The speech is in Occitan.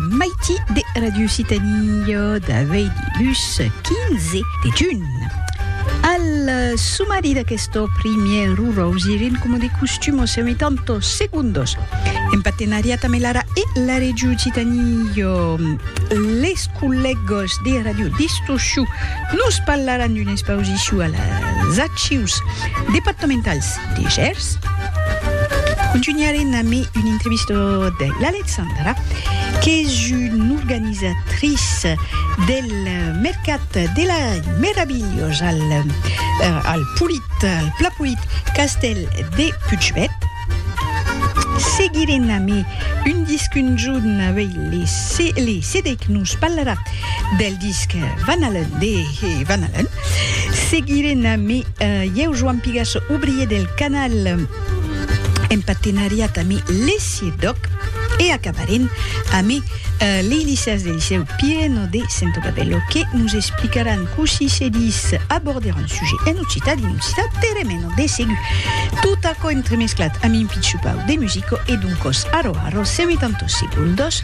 Maiti de Ràdio Occitània d'aveir dilhus 15 de junh. Al sumari d'aquesto primièr orausi rincoma de costum o seu mitan to segundos en partenariat amé l'ara e la Règio Occitània. Les collègos de Ràdio Distorsiu nos parlaràn d'una expausiciu a las archius departamentals de Gers. Contunharem amé un entrevista de l'Alexandra, qu'es un organisatrice del mercat de la meravilhós al al Polit, al Pla Polit Castèl de Putchbèth. Seguirem amé un disc un jorn avei les les Cedèc nos parlarà del disc Van Halen de que van alent. Seguirem amb Ieu Joan Pigas, obrier del canal, en partenariat amb l'ESSIE Doc, e acabarem amb lei licèas del Licèu Pireno de Sento Babello que nos explicaràn cossí se dis aborder un sujet en occitan dins l'occitan teremeno. De segur, tot aquò entremesclat amb un pitjupau de musico e d'un còs arro arro, se metan tot seguls dos.